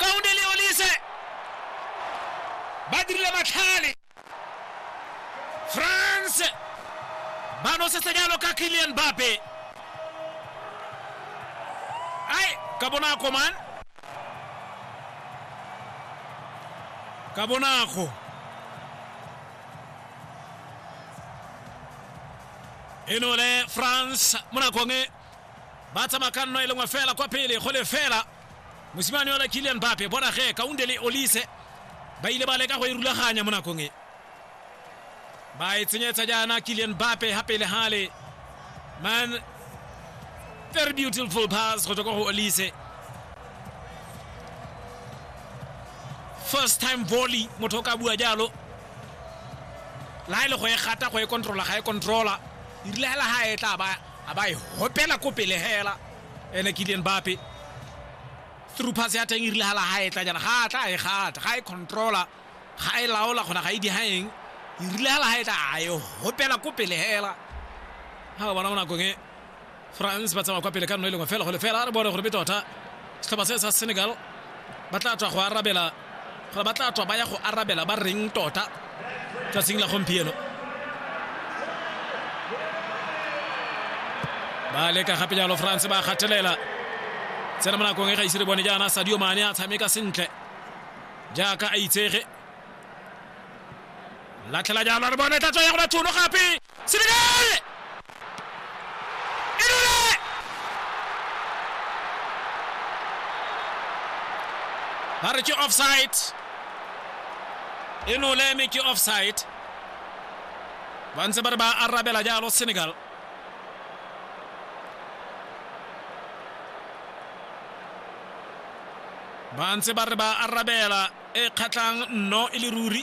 kaone le olise ba dirile matlhale france ba nosetsa jalo ka kilian bape ai ka bonako man ka bonako e no le france mo nakong e ba tsamaya ka nno e lengwe fela kwa pele go le fela mosimane ola kilian bape bona ge kaunde le olise ba ile ba leka go e rulaganya mo nakong e ba e tsenyetsa jaana kilian bape ga pele gale man very beautiful pass go tswa kwa go olise first time volley motho o ka bua jalo la e le go e gata go e controla ga e controla e rile hela ga e tla ba a ba e hopela ko pele hela ene ke dien bape through pass ya teng e rile hala ha e tla jana ga tla a e gata ga e controla ga e laola gona ga e di haeng e rile hala ha e tla a e hopela ko pele hela ha bona mo nakong e france ba tsamaya kwa pele ka nno e lengwe fela go lefela re bone gore be tota setlhopha se sa senegal ba tla tswa go arabela gore ba tla tswa ba ya go arabela ba reng tota tsatsing la gompieno ba leka gape jalo france ba gatelela tsena mo nakong e ga ise re bone jaana sadio mane a tshameka sentle jaaka a itsege latlhela jalo re bone tlatso ya go bathono gape Senegal Inule ba re ke offside Inule mme ke offside ba ntse ba re ba arabela jalo Senegal ba ntse ba re ba arabela e kgatlhang nno e le ruri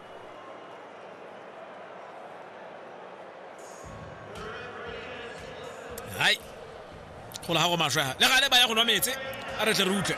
hai gola ga go maswe ha le gale ba ya go nwa metse a re tle re utlwe